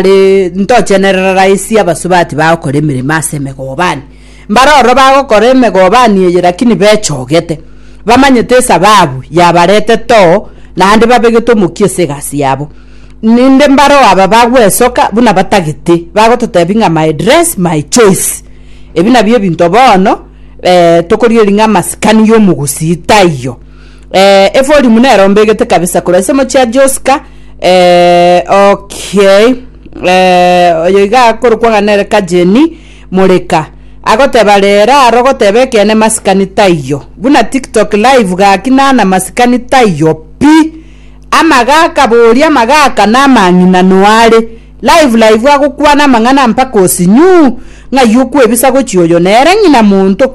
Ri- ntochenerera raisi abasubati bagokora emeremo ase emegobani mbare ororo bagokora emegobani eye lakini bechogete bamanyete esababu yabaretete oo naende babegete omokia ase egasi yabo ninde mbaro aba bagwesoka buna batagete bagototebi ng'a my dress my choice ebi nabio ebinto bono eh, tokorigereria ng'a amasikani ya omogusii taiyo. Eh, eforimu nero mbegete kabisa korwa ase mochia Joska. Eh, okay. Eh, oyo iga akorokwa ng'a nere Kajeni Moreka. Agoteba rera aro goteba ekene masikani taiyo. Buna TikTok live gaki nana masikani taiyo pi. Amagaka boria amagaka na amang'ina noare. Live live agokwana amang'ana mpaka osinyuu. Ng'ai okwebisa gochia oyo nere ng'ina monto.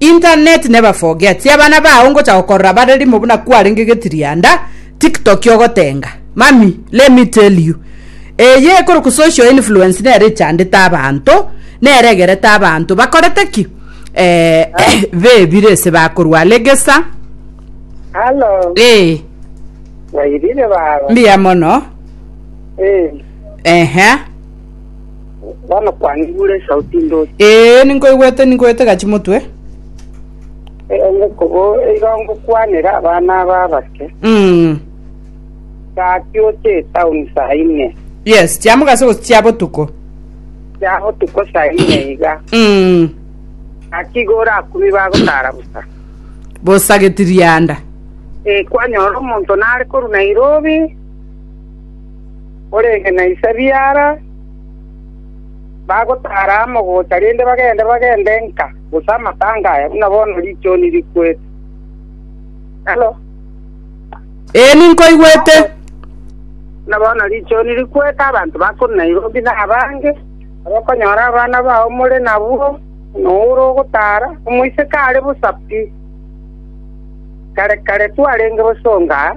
Internet neba forget sia abana bao ngocha gokorora bare rimo buna kwarenge getirianda tiktoki ogotenga mami let me tell you eye ekoroku social influence nere echandete abanto nere egerete abanto bakorete ki eeh bebire ase bakorwa legesa Halo, eeh wairire baba? mbuya mono Eh, ehe Bono kwanigure esauti ndoche. Ee, ninkoigwete, ninkoete gachie motwe. Omokobo iga ngokwanera abana aba abake. Mm. Gaki oche etaoni saa ine. Yes, chia mogaso gose chia botuko. Chia botuko saa ine iga. Mm. Gaki iga orakumi bagotara bosa. Bosa getirianda. Eh, kwanyora omonto nare koru Nairobi. orenge na Isabia ara, bagotaara amo gocha rende bagende bagende nka, gose amatanga aya, buna bono richooni rikwete. Halo. Ee, ninkoigwete. Buna bono richooni rikwete, abanto bakure Nairobi na abange, abakonyora abana bao more nabwo, buna ore ogotaara, omoiseke are bosa pi. Kare kare twarenge bosa onga aa.